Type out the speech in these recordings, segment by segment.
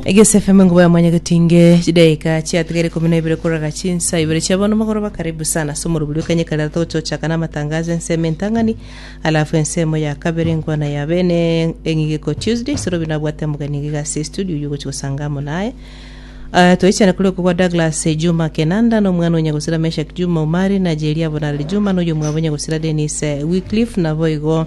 Egesefe Mungu Baba Mwanya Gotinge, chidaeka chiatigaire ikomi na ibere korora chinsa ibere chia bono mogoroba. Karibu sana ase omorobori o kanyeka riato gochiochaka na amatangazo ya ensemo entang'ani, alafu ensemo ya kabere engwana ya bene eng'igiko Tuesday. Sorobi nabwate omogeni iga ase estudio oyio ogochi gosanga amo naye. Ah, toichana kuri okobwa Douglas eh, Juma Kenanda na omwana onya gosira Meshak Juma Omari na Jeria Bonarari Juma na oyo mwabo onya gosira Dennis eh, Wycliffe naboigo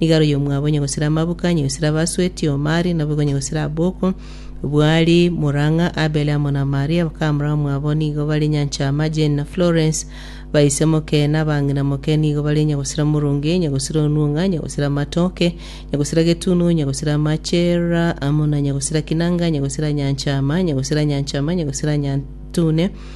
Igaro y'omwabo onye gosira amabuka, onye gosira abasweti, omari, naboigo onye gosira aboko. Bwari morang'a Abele amo na Maria, bakamura omwabo, nigo bare nyanchama, Jane na Florence, baise moke, na abang'ina moke, nigo bare onye gosira moronge, onye gosira onuong'a, onye gosira amatoke, onye gosira getunu, onye gosira amachera, amo na onye gosira kinanga, onye gosira nyanchama, onye gosira nyanchama, onye gosira nyantune,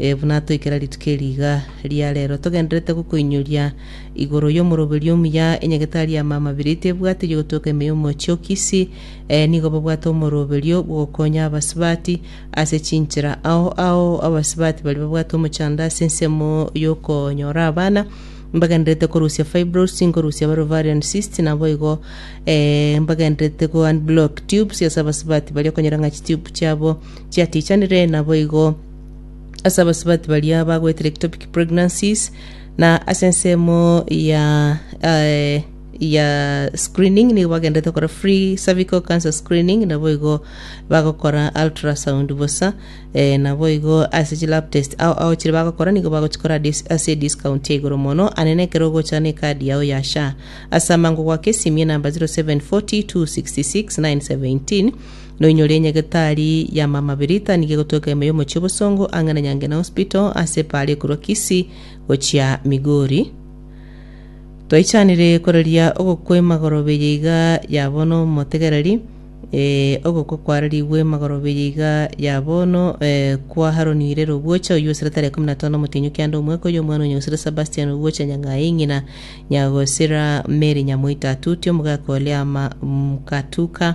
Ee, buna toikera rituko eri iga ria reero, togendererete gokoinyoria igoro y'omoroberi omuya, enyagetari y'amamabira ito ebwate y'ogotweka ime y'omochie o Kisii. Ee, nigo babwate omoroberio bw'ogokonya abasubati ase chinchera. Ao ao abasubati baria babwate omochando ase ensemo y'okonyora abana, mbagendererete korusia fibroids, nkorusia bare ovarian cysts, naboigo ee, mbagendererete go-unblock tubes ase abasubati baria okonyora ng'a chitube chiabo chiatichanire, naboigo ase abasubati baria bagwetire ectopic pregnancies na ase ensemo ya eh, ya screening nigo bagendete gokora free cervical cancer screening nabo igo bagokora ultrasound bosa eh, nabo igo ase chi lab test ao ao chire bagokora nigo bagochikora dis- ase discount ya igoro mono anene ekero ogocha na ekadi yao ya sha ase amango gwake simia enamba 0740 266 917 Noinyore enyagetari ya Mama Birita nigo egotweka ime y'omochie obosongo ang'e na Nyangena Hospital ase epaara ekorwa Kisii gochia Migori. Twaichanire koreria ogokwa emagorobe eye iga ya bono motegereri, eh, ogokwa kwarerigwe emagorobe eye iga ya bono eh, kwa Haroni Irere Obwocha oyio osire tarehe ikomi na tano omotienyi o kianda omweka oyio omwana onya osire Sebastian Obwocha nyang'aye ng'ina nyagosira Mary Nyamoita Atuti omogaka o Liama Mkatuka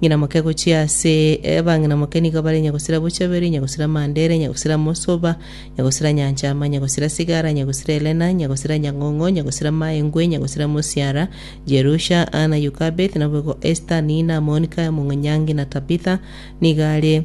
Ng'ina moke gochia ase abang'ina moke nigo bare nyagosira bochabere, nyagosira Mandere, nyagosira Mosoba, nyagosira Nyanchama, nyagosira Sigara, nyagosira Elena, nyagosira Nyang'ong'o, nyagosira Maengwe, nyagosira Mosiara, Jerusha, Ana, Yukabeth, naboigo Esta, Nina, Monika, Mong'onyang'ina, Tabitha, nigo are